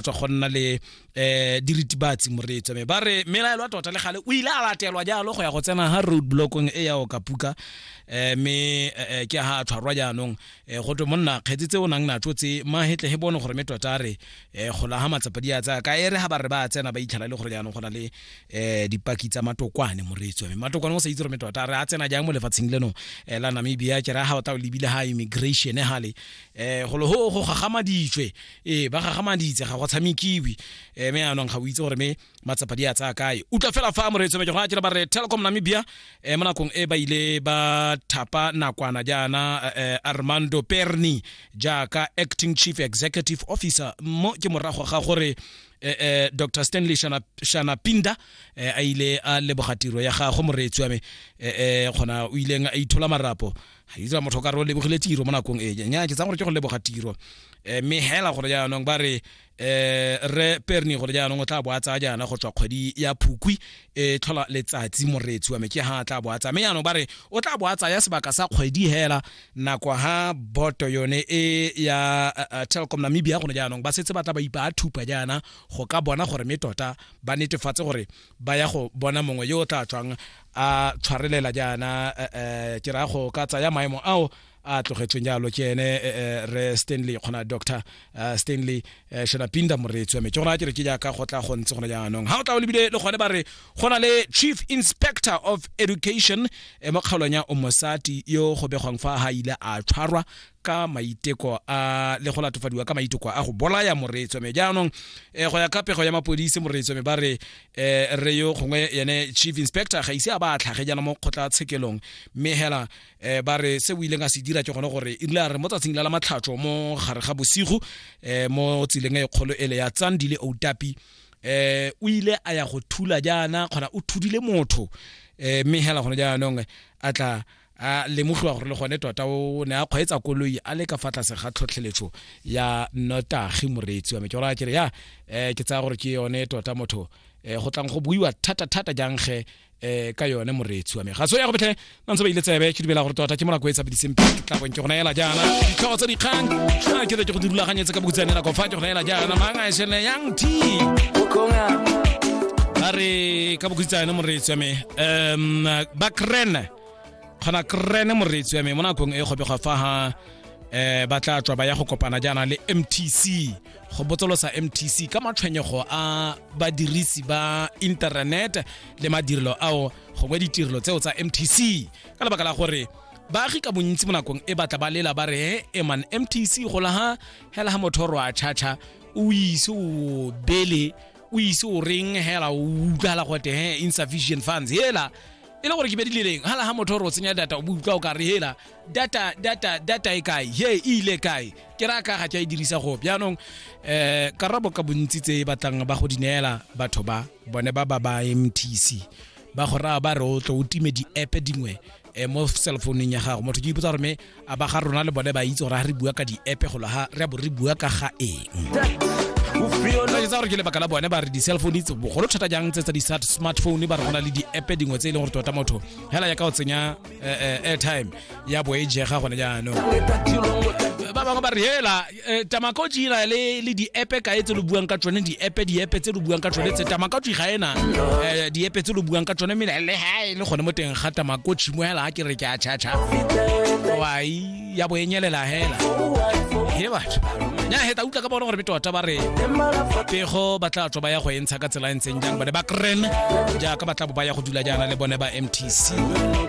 tswa go nna le um diritibatsi moreetso me ba re melaelo a tota le gale o ile a latelwa jalo go ya go tsena ga road blockong e ya o kapuka um me eh, ke ga a tshwarwa jaanong um go twe monna kgetse tse o nang natso tse mahetle he bone gore me tota a re um gola ga matsapa di a tsaya ka ere ga ba re ba tsena ba itlhela le gore jaanong go na le um dipaki tsa matokwane moreetso me matokwane o sa itse gore me tota a re a tsena jang mo lefatsheng leno um la namibia ke ra ga o tao lebile ga immigration gale um golo ho go gagamaditswe ee ba gagamaditse ga go tshamekiwe um me anong ga o itse gore me matsapa di a tsaya kae utlwa fela fa moreetso meke go a tira ba re telecom namibia um mo nakong e ba ile ba thapa nakwana jaana um armando perni jaaka acting chief executive officer mo ke morago ga gore eh, eh, dr stanley shana, shana pinda eh, a ile a leboga tiro ya gagwe moreetsi wa me eh, eh, kgona o ileng a ithola marapo itsa motho ka re o lebogile tiro mo nakong e nya ke tsang gore ke go leboga tiro um mme hela gore jaanong ba re um re perni gore jaanong o tla bo a tsaya jaana go tswa kgwedi ya phukwi e tlhola letsatsi moreetsi wa me ke ha tla bo a tsaya mme jaanong ba re o tla bo a tsaya sebaka sa kgwedi hela nako ha boto yone e ya telcom namibia gone jaanong ba setse ba tla ba ipa a thupa jaana go ka bona gore mme tota ba netefatse gore ba ya go bona mongwe yo o tla tswang a tshwarelela jaana eh, eh, ke raya go ka tsaya maemo ao a tlogetsweng jalo ke ene eh, re stanley kgona doctor stanley shona pinda moreetsi wa me ke gona ke re ke jaaka go tla go ntse gone jaanong ga o tla o lebile le gone ba re go na le chief inspector of education mo kgaolong ya omosati yo go begwang fa ga ile a tshwarwa ka maiteko a le go latofadiwa ka maiteko a go bolaya moreetso me jaanong eh, go ya ka pego ya mapodisi moreetso me ba re eh, re yo gongwe yene chief inspector ga ise a ba a tlhage jana mo kgotla tshekelong mme hela eh, ba re se o ileng a se dira ke gone gore e rile re mo tsatsing la la matlhatso mo gare ga bosigo eh, mo tseleng e kgolo ele ya tsandile outapi eh o ile a ya go thula jaana kgona o thudile motho eh mme hela gone jaanong a tla a lemogiwa gore le gone tota o ne a kgweetsa koloi a le ka fa tlase ga tlhotlheletso ya notagi moreetsi wa me ke gora kere ya um ke tsaya gore ke yone tota motho um go tlang go buiwa thata-thata jang ge um ka yone moreetsi wa me ga so ya go betlhe ba ntse ba ile tsebe ke dumela gore tota ke molako e tsa bidisemphi tlabong ke go naela jaana ditlhogo tsa dikgang a ke ke go di rulaganyetse ka bokutsane nako fa ke go naela jaana mang a esene yang t ba re ka bokutsane moreetsi wa me um bakrene kgona krene moreetsi wa me mo nakong e kgobega fa ha eh ba tla tswa ba ya go kopana jaana le mtc go botsolosa mtc ka matshwenyego a badirisi ba internet le madirelo ao gongwe ditirelo tseo tsa mtc ka lebaka la gore baagi ka bontsi mo nakong e batla ba lela ba re he eman mtc gola ha hela ha motho ro a chacha o ise o bele o ise o reng hela o utlwala gote he insufficient funds hela e le gore ke bedileleng ga laga motho gore o tsenya data o bo utlwa o ka re hela data data data e kae he e ile kae ke ra ka ga ke a e dirisa go jaanong um karabo ka bontsi tse e batlang ba go di neela batho ba bone ba ba ba mtc ba go raya ba re o tlo o time di-app dingwe um mo cellphoneng ya gago motho ke ipotsa gore me a ba ga rona le bone ba itse gore ga re bua ka di-app golo ga re a bo re bua ka ga eng tsa gore ke lebaka la bone ba re di-cell phone itse bogolo thata jang tse tsa di-smartphone ba re go na le di-app dingwe tse e leng gore tota motho fela ya ka o tsenya eh, eh, airtime ya bo e jega gone jaanong ba bangwe ba re hela Eh, tamakoji e na le le di-epe kae tse lo buang ka tsone di-epe di-epe tse lo buang ka tsone tse tamakoji ga ena eh, di-epe tse lo buang ka tsone mme le ha e le gone mo teng ga tamakoji mo hela ke re ke a chacha wai ya bo e nyelela hela he batho nya heta utlwa ka bona gore betota ba re pego ba tla tswa ba ya go e ntsha ka tsela e ntseng jang bone ba kren jaaka ba tla bo ba ya go dula jaana le bone ba mtc